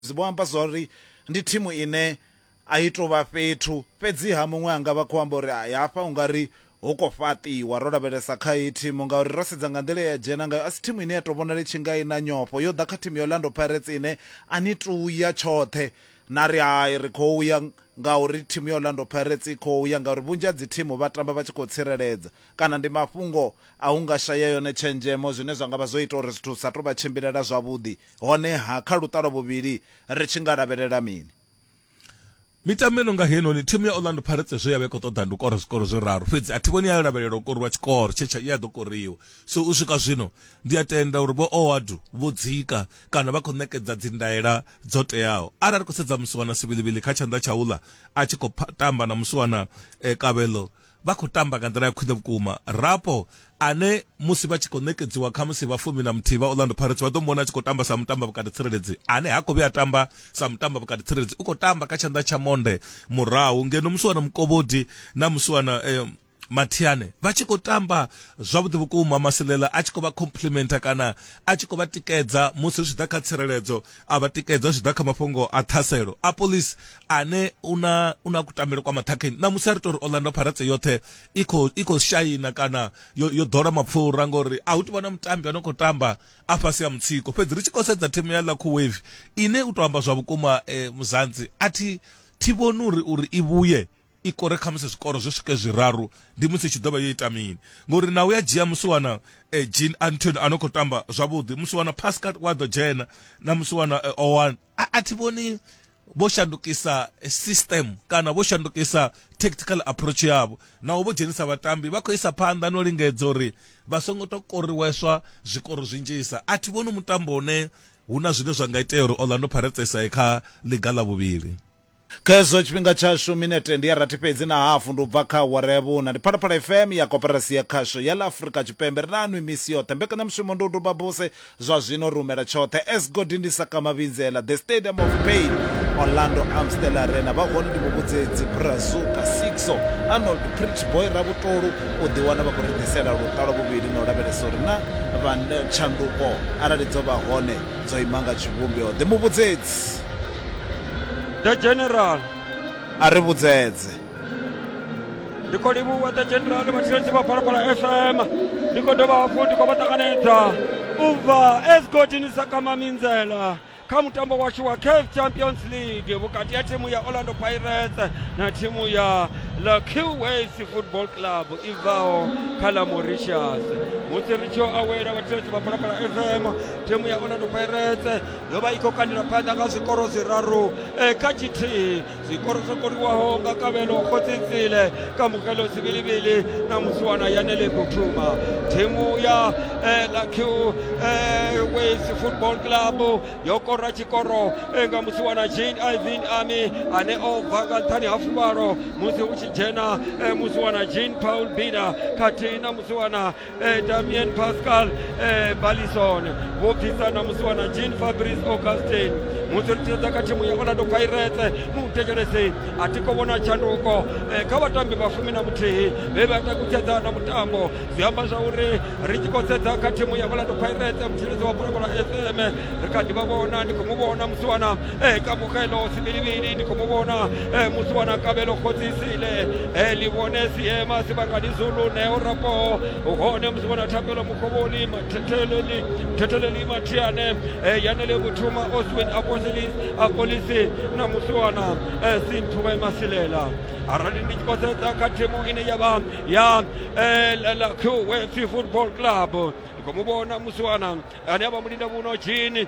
Zwi vho amba zwa uri ndi thimu ine a i tou vha fhethu fhedziha muṅwe anga vha khou amba uri hai hafha u nga ri ho ko fhaṱiwa ro lavhelesa kha iyi thimu ngauri ro sedza nga nḓila ya dzhena ngayo a si thimu ine ya tou vhonala i tshi nga i na nyofho yo ḓa kha thimu ya Orlando Pirates ine a ni tou ya tshoṱhe na ri hai ri khou ya ngauri thimu ya Orlando Pirates i khou ya ngauri vhunzhi ha dzi thimu vha tamba vha tshi khou tsireledza kana ndi mafhungo a hu nga shaya yone tshenzhemo zwine zwa nga vha zwo ita uri zwithu sa tou vha tshimbilela zwavhuḓi Honeha, kha luṱa lwa vhuvhili ri tshi nga lavhelela mini? Mitambo i no nga heinoni, thimu ya Orlando Pirates zwe ya vha i khou ṱoḓa ndi u kora zwikoro zwiraru, fhedzi a thi vhoni ya lavhelela u koriwa tshikoro tshe tsha ya ḓo koriwa. So u swika zwino, ndi a tenda uri Vho Ouaddou vho dzika kana vha khou ṋekedza dzindaela dzo teaho. Arali ri khou sedza musiwana Sibilibilikhá tshanḓa tsha uḽa a tshi khou tamba na musiwana Kabelo, vha khou tamba nga nḓila ya khwine vhukuma. Rapo, ane musi vha tshi khou ṋekedziwa khamusi vha fumi na muthihi vha Orlando Pirates vha ḓo mu vhona a tshi khou tamba sa mutambi vhukati tsireledzi ane ha khou vhuya a tamba sa mutambi vhukati tsireledzi, u khou tamba kha tshanḓa tsha monde murahu ngeno musiwana Mukovhodi na musiwana eh, Mathiane vha tshi khou tamba zwavhuḓi vhukuma Masilela a tshi khou vha complimenta kana a tshi khou vha tikedza musi zwi tshi ḓa kha tsireledzo a vha tikedza zwi ḓa kha mafhungo a ṱhaselo a polisi ane u na u na kutambele kwa maṱhakheni ṋamusi a ri tori orlando pirates yoṱhe i khou i khou shaina kana yo, yo ḓola mapfura ngori a hu tivha na mutambi ano khou tamba a fhasi ya mutsiko fhedzi ri tshi khou sedza thimu ya lakhu wave ine u to amba zwa vhukuma eh, muzanzi a thi thi vhoni uri uri i vhuye i kore khamusi zwikoro zwo swike zwiraru ndi musi tshi ḓovha yo ita mini ngori na u ya dzhia musi wana eh, jean antony a no khou tamba zwavhuḓi musi wana pascal wa ḓo dzhena na musi wana eh, owan a, a thi vhoni vho shandukisa eh, system kana vho shandukisa tactical approach yavho naho vho dzhenisa vhatambi vha khou isa phanḓa no lingedza uri vha songo to koriweswa zwikoro zwinzhisa a thi vhoni mutambo une hu na zwine zwa nga itea uri orlando pirates i sa ye kha ḽiga ḽa vhuvhili Kha hezwo tshifhinga tshashu minete ndi ya rathi fhedzi na hafu ndi u bva kha awara ya vhuṋa. Ndi Phalaphala FM ya Koporasi ya Khasho ya ḽa Afrika Tshipembe. Ri na nwi misi yoṱhe. Mbekanyamushumo ndi u duba buse zwa zwino ri humela tshoṱhe. As Godi ndi Saka Mavhindzela, The Stadium of Pain, Orlando Amstel Arena. Vha hone ndi Muvhudzedzi, Brazuka, Sixo, Arnold, Pretty Boy, Ravhutolu. U ḓiwana vha khou ri ḓisela luṱa lwa vhuvhili na u lavhelesa uri na vha tshanduko arali dzo vha hone dzo ima nga tshivhumbeo. The Muvhudzedzi. the general a ri vhudzedze ndi khou livhuwa the general vhatsireledzi vha phalaphala fm ndi khou dovha hafhu ndi khou vha ṱanganedza u bva esgodini sa kama minzela kha mutambo washu wa caf champions league vhukati ha thimu ya orlando pirates na thimu ya la qways football club i bvaho kha la mauritius musi ri tshi yo awela vhatsireledzi vha phalaphala fm thimu ya orlando pirates yo vha i khou kandela phanḓa nga zwikoro zwiraru eh, kha tshithihi zwikoro zwo koliwaho nga kavhelo khotsitsile kamukelo zivilivili na musiwana yanele kuthuma thimu ya eh, lakiu eh, wales football club yo kora tshikoro nga musiwana jean ivin ami ane o bva nga nṱhani ha fuvhalo musi hu tshi dzhena musiwana jean paul bina khathihi na musiwana eh, damien pascal eh, balison vho bvisa na musi wana jean fabrice augustin musi ri tshedza kha thimu ya orlando pirates mu thetshelesi a thi khou vhona tshanduko eh, kha vhatambi vha fumi na muthihi vhe vha takutshedza na mutambo zwi amba zwa uri ri tshi khou sedza kha thimu ya orlando pirates mutshilidzi wa bulakula fm ri kha ḓi vha vhona ndi khou mu vhona musi wana e kamogelo sebilibili ni khou vhona e musi wana kabelo khodzisile e li vhone siema sibakani zulu neo rapo hone musi vhona thapelo mukhovhoni mathetheleli thetheleli mathiane e yanele kuthuma oswin apostolis apolisi na musi wana e sinthuwe masilela arali ndi tshi khou sedza kha thimu ine ya vha ya la qwf football club ndi khou mu vhona musi wana ane a vha mulinda vhuno jini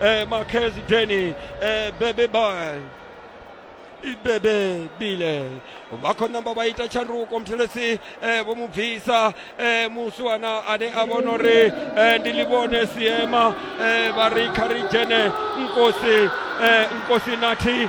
Eh, Marquez Denny, eh, Bebe Boy. ibebe bile vha khou namba vha ita tshanduko muthelesi eh, vho mu bvisa eh, muswana ane a vhona uri eh, ndi livhone siema eh, vha ri kha ri dzhene nkosi eh, nkosi nathi